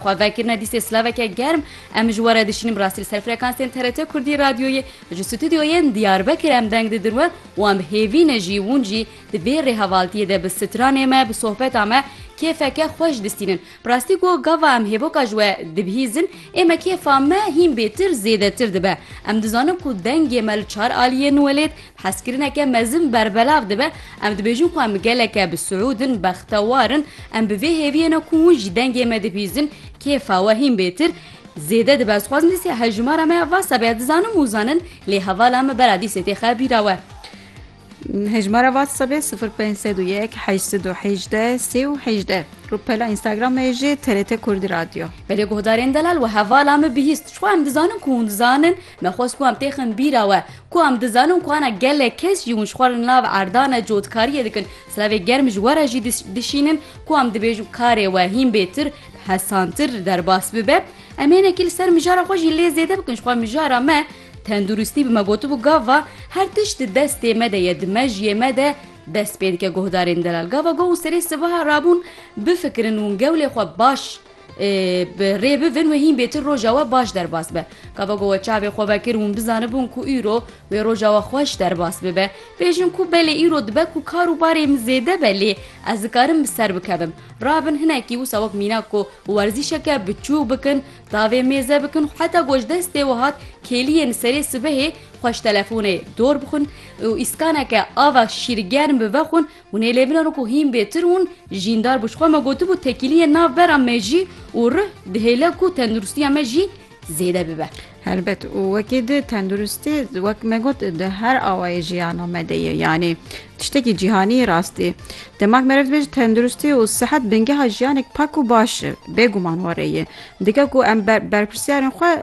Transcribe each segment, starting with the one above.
Xwe vekirine dîsê silaveke germ, em ji we re dişînim rastî li ser frekansên TRT Kurdî radyoyê, ji stûdyoyên Diyarbekir em deng didin we û em bi hêvî ne jî hûn jî di vê rêhevaltiyê de bi stranê me, bi sohbeta me kêfeke xweş distînin. Bi rastî ku gava em hêvoka ji we dibihîzin ê me kêfa me hîn bêtir zêdetir dibe. Em dizanin ku dengê me li çar aliyên Welêt, Hezkirineke mezin berbelav dibe, em dibêjin ku em geleke bi siûd in, bextewar in, em bi vê hêviyê ne ku hûn ji dengê me dibîzin, kêfa we hîn bêtir, zêde dibe. Ez xwazim dîsê hejmara me ya va sebe ya dizanim û zanin, lê hevala me bera dîsê tê xe bîra we. Hejmara va sebê sifir pênc sed û yek heşt sed û hejdeh sê û hejdeh. Rûpela Instagram me jî TRT Kurdî Radyo. Belê guhdarên delal we hevala me bihîst. Çixwe em dizanin ku hûn dizanin, Me xwest ku em têxin bîra we ku em dizanin ku ana gelek kes jî hûn ji xwe re li nav erdane cotkariyê dikin, silavê germ ji we re jî dişînin ku em dibêjin karê we hîn bêtir, pesantir derbas bibe. Em hênekî li ser mijara xwe jî lê zêde bikin ji xwe mijara me tenduristî bi me gotibû gava her tişt di destê me de ye di mejiyê me de dest pê dike guhdarên delal gava goh û serê sivaha rabûn bifikirin û gewlê xwe baş Bi rê bivin wê hîn bêtir roja we baş derbas be. Ka vego we çavê xwe vekir hûn bizanibûn ku îro wê roja we xweş derbas bibe. Bêjin ku belê îro dibe ku kar û barê min zêde be lê ez dikarim bi ser bikevim. Rabin hinekî wisa wek mînak ku werzîşeke biçûk bikin, tavê mêze bikin, heta ku ji destê we hat kêliyê li serê sibehê xweş telefonê dor bixwin û îskaneke ava şîrgerm bi vexwin, Hûn ê lê binan ku hîn bêtir hûn jîndar bû. Ji xwe me gotibû tekîliyên nav bera me jî û rih dihêle ku tenduristiya me jî zêde bibe. Helbet û wekî di tenduristî wek me got di her awayê jiyana me de ye yanî tiştekî cîhanî rastî. Demak meriv dibêje tenduristî û sihet bingeha jiyanek pak û baş e. Bêguman warê ye. Dike ku em berpirsyarên xwe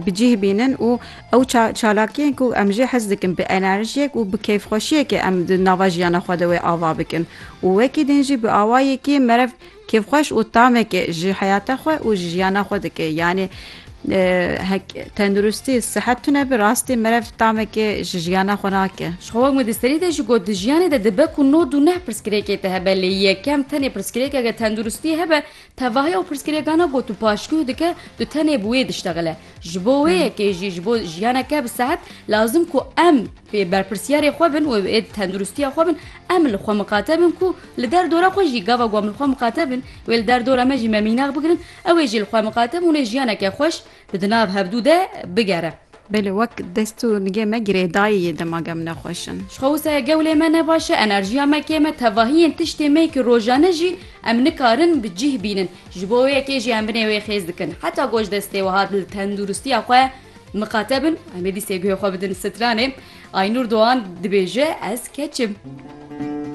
bi cîh bînin û Ew çalakiyên ku em jê hez dikin bi enerjiyek û bi kêfxweşiyekê em di nava jiyana xwe de wê ava bikin û wekî din jî bi awayekî merev kêfxweş û tamekê ji heyata xwe û ji jiyana xwe dike yanî hek tenduristî sihet tune bi rastî merev tamekê ji jiyana xwe nake. Jixwe wek min di serî de jî got di jiyanê de dibe ku nod û neh pirsgirêkê te hebe lê yekem tenê pirsgirêkeke tenduristî hebe Tevahî ew pirsgirêkana got û paşguh dike tu tenê bi wê diştexile. Ji bo wê yekê jî ji bo jiyaneke bi sehet lazim ku em pê berpirsiyarê xwe bin û ê tenduristiya xwe bin em li xwe miqate bin ku li der dora xwe jî gava ku em li xwe miqate bin wê li der dora me jî me mînax bigirin ew ê jî li xwe miqate bin û jiyaneke xweş Di di nav hevdû de bigere. Belê wek dest û nigê me girê dayê yê dema ge min e xweş in. Ji xwe wisayê gewlê me ne baş e, enerjiya me kêm e, tevahiyên tiştê me ki rojane jî em nikarin bi cîh bînin. Ji bo wê yekê jî em binê wê xêz dikin. Heta ku ji destê wiha li tenduristiya xwe miqate bin, em ê dîsê guhê xwe bidin stranê. Aynur Doğan dibêje, Ez keç im.